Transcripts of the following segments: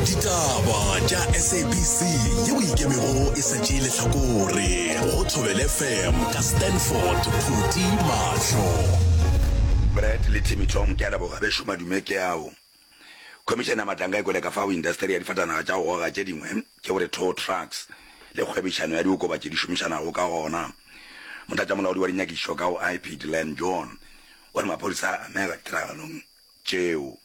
ditaba tša sabc yeo e ikemego e sa tšee lehlakore go thobele fm ka stanford phuti mahlo brad le timmy tom ke a leboga be šoma dume ke ao khomišene ya matlanka e kwele ka fao industeri ya difatanaga tša go goga tše dingwe ke gore tow trucks le kgwebišano ya diokobatši di šomišanago ka gona motlatšamolaodi wa dinyakišišo ka go ip delan john o re maphodisa a amega ditiragalong tšeo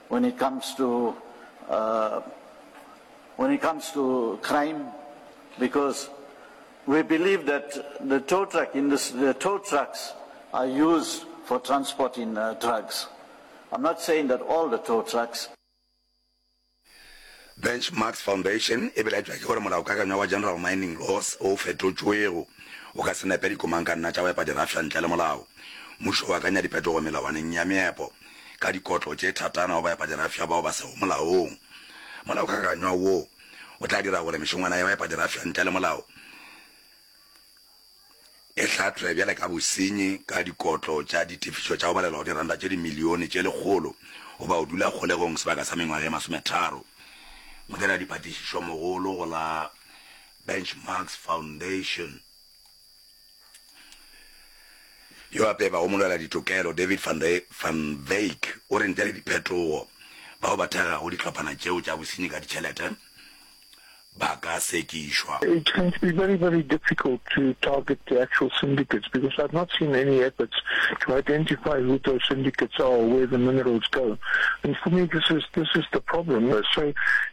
When it comes to uh, when it comes to crime, because we believe that the tow truck industry, the tow trucks are used for transporting uh, drugs. I'm not saying that all the tow trucks. benchmarks foundation e belaetšwa ke gore molaokakanywa wa general mining laws o fetotšwego o ka se nepe dikomang ka nna tša go epa dirafša ntle le molao mmušo o akanya diphetogo melawaneng ya meepo ka dikotlo tše thatana go baepadirafša bao ba sego molaong. Molaokakanywa wo o tla dira gore mešongwana ya baepadirafša ntle le molao e hlahlwe bjale ka bosenyi ka dikotlo tša ditefišo tša go balelwa go diranta tše dimilione tše lekgolo goba go dula kgolegong sebaka sa mengwaga e masometharo. Modiradiphatišišomogolo go la Benchmarks Foundation Yo a peba go molwela ditokelo David van de van Wyk o re ntle le diphetogo bao ba thagago dihlophana tšeo tša bosenyi ka ditšhelete ba ka sekišwa. It's going to be very very difficult to target the actual syndicates because I've not seen any efforts to identify who those syndicates are or where the minerals go and for me this is this is the problem so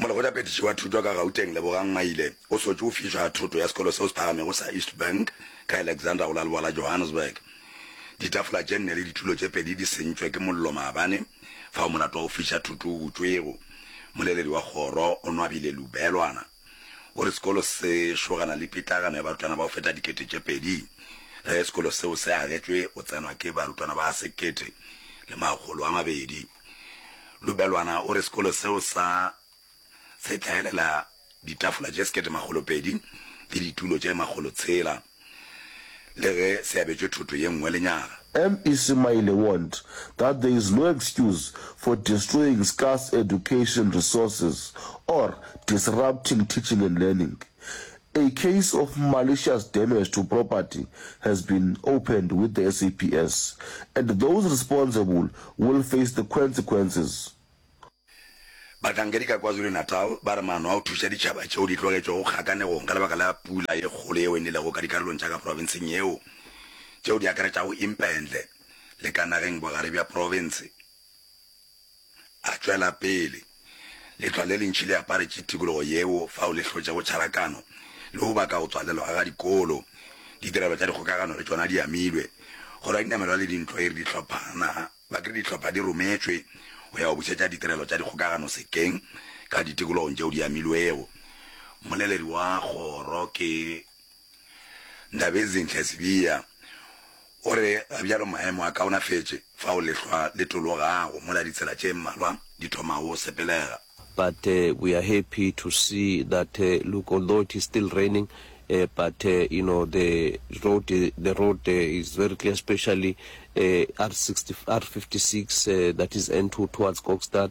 Molekgothaphethiši wa Thuto ka Gauteng Lebogang Maile o sotše o fišwa ga thoto ya sekolo seo se phagamego sa East Bank ka Alexandra go la leboa la Johannesburg. Ditafola tše nne le ditulo tše pedi di sentšwe ke mollo maabane fao molato wa go fiša thoto o butšwego. Moleledi wa kgoro Onwabile Lubelwana o re sekolo se šogana le pitlagano ya barutwana ba go feta dikete tše pedi ge sekolo seo se agetšwe go tsenwa ke barutwana ba sekete le makgolo a mabedi. Lubelwana o re sekolo seo sa se hlaelela ditafola tše sekete makgolo pedi le ditulo tše makgolo tshela le ge se abetšwe thoto ye nngwe lenyaga. Mec Maile warned that there is no excuse for destroying scarce education resources or disrupting teaching and learning. A case of malicious damage to property has been opened with the SAPS and those responsible will face the quensequences. Bahlankedi ka KwaZulu-Natal ba re maano a go thuša ditšhaba tšeo di tlogetšwego kgakanegong ka lebaka la pula ye kgolo yeo e nelego ka dikarolong tša ka profenseng yeo tšeo di akaretšago Impendle le Kanageng bogare bja profense, A tšwela pele, Letlwa le lentši le aparetše tikologo yeo fao le hlotšego tšharakano le go baka go tswalelwa ga dikolo. Ditirelo tša dikgokagano le tšona di amilwe. Kgoro ya Dinamelwa le Dintlo e re dihlophana ba kry dihlopha di rometšwe go ya go bušetša ditirelo tša dikgokagano sekeng ka ditikologong tšeo di amilwego. Mmoleledi wa kgoro ke. Ndabezinhle Sibiya o re ga bjalo maemo a kaonafetše fao lehlwa le tologago mola ditsela tše mmalwa di thomago go sepelega. But we are happy to see that look although it is still raining but you know the road the road is very clear especially R56 that is N2 towards Kokstad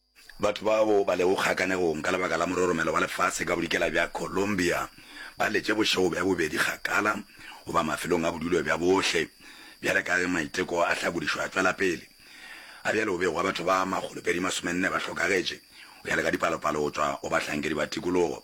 Batho bao ba lego kgakanegong ka lebaka la mororomelo wa lefase ka bodikela bja Colombia ba letše bošego bja bobedi kgakala goba mafelong a bodulo bja bohle. Bjale ka ge maiteko a hlakodišo a tšwela pele, a bjale go bego wa batho ba makgolopedi masomenne ba hlokagetše, go ya le ka dipalopalo go tšwa go bahlankedi ba tikologo.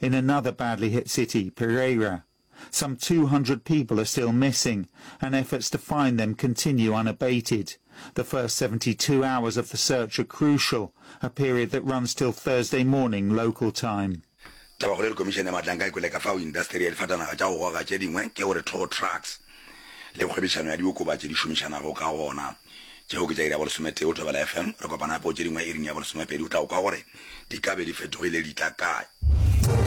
In another badly hit city, Pereira, some two hundred people are still missing and efforts to find them continue unabated. The first seventy two hours of the search are crucial, a period that runs till Thursday morning local time. Tabakgolo le Komišene ya Matla nka e kwele ka fao indasteri ya difatanaga tša go goga tše dingwe ke gore tow trucks le kgwebišano ya diokobatši di šomišanago ka gona. Tšeo ke tša iri ya bolesometee go Thobela FM. Re kopana gape go tše dingwe iring ya bolesomepedi. O tla go kwa gore di ka be di fetogile di tla kae.